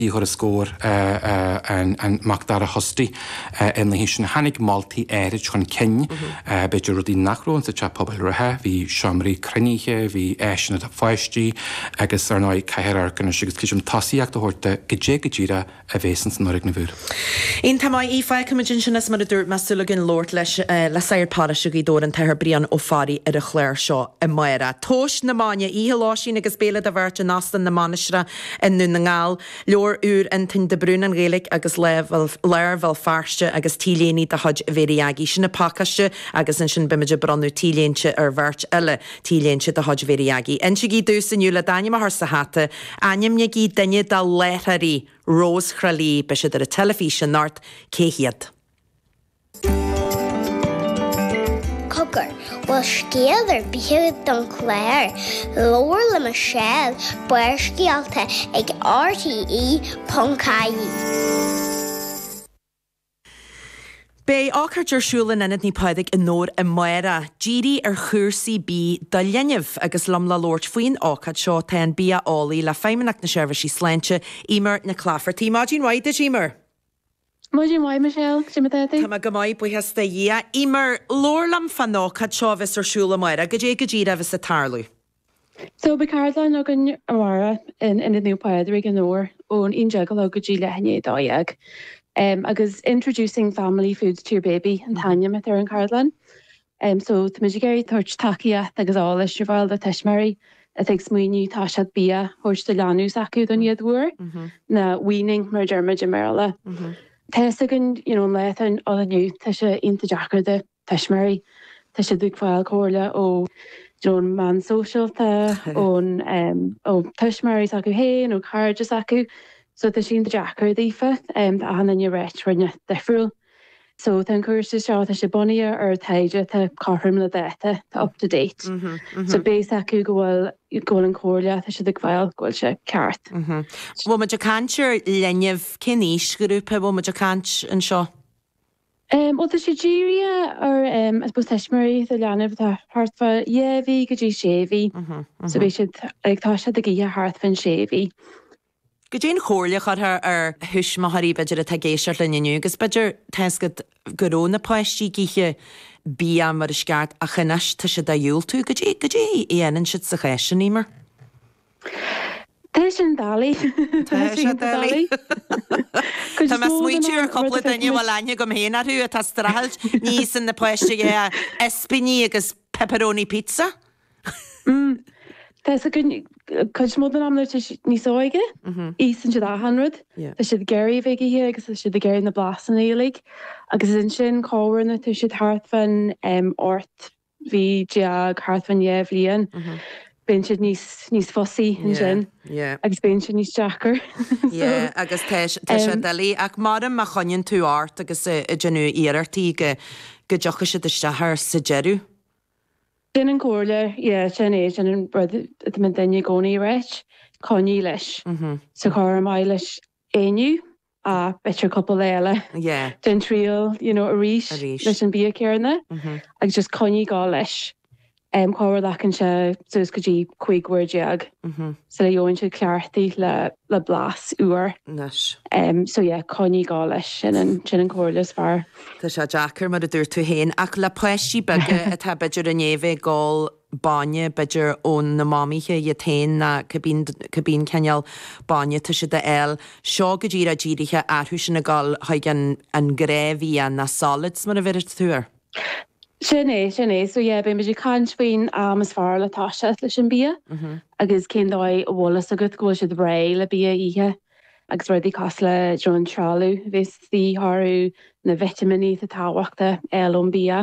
i dtuarascáil an Mac Dara Hosty ar na haoiseanna. Tháinig moltaí áirid chun cinn, b'fhéidir, rudaí nach raibh sa teach pobail reatha, bhí seomraí cruinnithe, bhí áiseanna do pháistí agus, ar ndóigh, caithfear amharc anois agus creidim tosaíocht a thabhairt do goidé go díreach a bhéas ins an fhoirgneamh úr. In The MII feicimid ansin, is mar a dúirt mé, súil againn labhairt leis le sagart paróiste Ghaoth Dobhair, an tAthair Brian Ó Fearraigh, ar an chlár seo amárach. Tomhas na Maidne, Oíche Lóistín agus Béile do Bheirt in Óstán na Mainistreach. i nDún na nGall, leabhar úr Fhionntáin de Brún, An Ghaeilge agus Lár Bhéal Feirste agus T-léine de chuid Mhary Aggie. Sin an pacáiste agus ansin beimid ag bronnadh T-Léinte ar bheirt eile, T-léinte de chuid Mhary Aggie. Insígí domhsa inniu le d'ainm a chur sa hata, ainmnigí duine de láithreoirí Rós Thrá Lí, beidh siad ar an teilifís anocht, cé hiad? Cogar, bhfuil scéal ar bith don chlár? Labhair le Michelle, Barrscéalta ag RTÉ.ie. Beidh ócáid ar siúl in Ionad Naomh Pádraig i nDobhar amárach, dírithe ar chúrsaí bídh do linbh. Agus liom le labhairt faoin ócáid seo, tá an bia-eolaí le Feidhmeannacht na Seirbhísí Sláinte, Eimear Nic Laifeartaigh. Maidin mhaith duit, Eimear. Maidin mhaith Michelle, goidé mar atá tú? Tá mé go maith, buíochas do Dhia. Eimear, labhair liom fán ócáid seo a bheas ar siúl amárach. Goidé go díreach a bheas ag tarlú. So beidh ceardlann againn amárach in Ionad Naomh Pádraig i nDobhar ón 11 a chlog go dtí leath i ndiaidh 12. Agus Introducing Family Food to your Baby an t-ainm atá ar an ceardlann. em so táimid ag iarraidh tabhairt tacaíocht agus eolais ar fáil do thuismitheoirí atá ag smaoineamh tá fhios agat bia a thabhairt do leanbh s'acu don chéad uair nó weaning mar a deirmid i mBéarla tá fhios againn you know an lá atá ann inniu tá sé iontach deacair do tuismitheoirí tá siad ag fáil comhairle ó you know an meán sóisialta ón em ó tuismitheoirí s'acu féin ó cairde s'acu so tá sé iontach deacair daofa em tá achan duine ag ráit rud inteacht difriúil. So tá an cúrsa seo, tá sé bunaithe ar taighde, tá cothrom le dáta, tá up to date. So beidh a fhios acu go bhfuil, go bhfuil an comhairle atá siad ag fáil, go bhfuil sé ceart. Bhfuil muid ag caint ar linbh, cén aoisghrúpa a bhfuil muid ag caint anseo? Em, bhuel tá sé dírithe ar em, I suppose tuismitheoirí le leanbh atá thart fá dhá mhí go dtí sé mhí. So beidh siad, like tá siad ag ithe thart fán sé mhí. Goidé an chomhairle a chuirfeá ar thuismitheoirí b'fhéidir atá ag éisteacht linn inniu agus b'fhéidir tá fhios agat go raibh na páistí ag ithe bia mar is ceart ach anois tá siad á dhiúltú. Goidé, goidé a dhéanann siad sa chás sin, Eimear? Tá sé an-doiligh. Tá sé an-doiligh. Tá mé ag smaoitiú ar chúpla duine a bhfuil aithne agam féin orthu atá strachailt níos san na páistí ag ithe ispíní agus pepperoni pizza. Tá's againn cuid mhór den am nuair atá siad níos óige, íosann siad achan rud. Tá siad ag iarraidh a bheith ag ithe agus tá siad ag iarraidh na blasanna uilig. Agus ansin chóir nuair atá siad thart fán ocht mhí déag, thart fán dhá bhliain, bíonn siad níos, níos fussy ansin agus bíonn sé níos deacra. Yeah, agus tá sé, tá sé doiligh. Ach mar a, má choinníonn tú ort agus ag déanamh iarrachtaí go, go dtiocfaidh siad isteach air sa deireadh. Sin an comhairle, yeah, sin é, sin an rud a deireann daoine i gcónaí, right, coinnigh leis, siocair mura maith leis é inniu b'fhéidir cúpla lá eile, yeah, déan triail, you know, arís, arís, leis an bia céarna, agus just coinnigh ag gol leis, em, siocair glacann sé suas go dtí 15 uair, sula gheibheann sé cleachtaithe le. le blas úr. Anois. So yeah, coinnigh ag gol leis, sin an, sin an comhairle is fearr. Tá sé deacair, mar a dúirt tú féin, ach le páistí beaga atá b'fhéidir i ndiaidh a bheith ag ól bainne, b'fhéidir ó na mamaithe iad féin, nó cá bith, cá bith cineál bainne atá siad a fháil, seo go díreach dírithe orthu sin ag gol chuig an, an gnáthbhia, na solids mar a bheireas tú air. Sin é, sin é. So yeah, beidh muid ag caint faoin am is fearr le toiseacht leis an bia agus cén dóigh a bhfuil fhios agat go bhfuil siad réidh le bia a ithe agus rudaí cosúil le an trealamh a bheas de dhíth orthu, na vitimíní atá tábhachtach a fháil ón bia.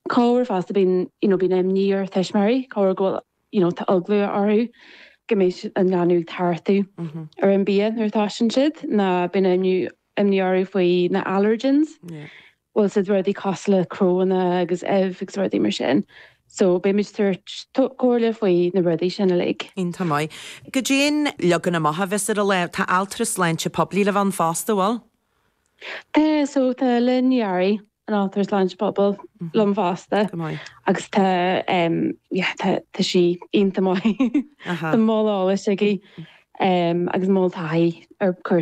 Cabhair fosta, bíonn, you know, bíonn imní ar thuismitheoirí, siocair go bhfuil, you know, tá eagla orthu go mbeidh an leanbh ag tachtadh ar an bia nuair a thoisíonn siad, nó bíonn imní orthu faoi na allergens. bhfuil a fhios agat rudaí cosúil le cnónna agus uibh agus rudaí mar sin so beidh muid ag tabhairt comhairle faoi na rudaí sin uilig. Iontach maith. Goidé an leagan amach a bheas ar an lá? Tá altra sláinte poiblí le bheith ann fosta, bhfuil? Tá so tá Lynn Ní Fhearraigh an altra sláinte pobail liom fosta agus tá em yeah tá tá sí iontach maith. Tá moll eolais aici em agus moll taithí ar cúrsaí.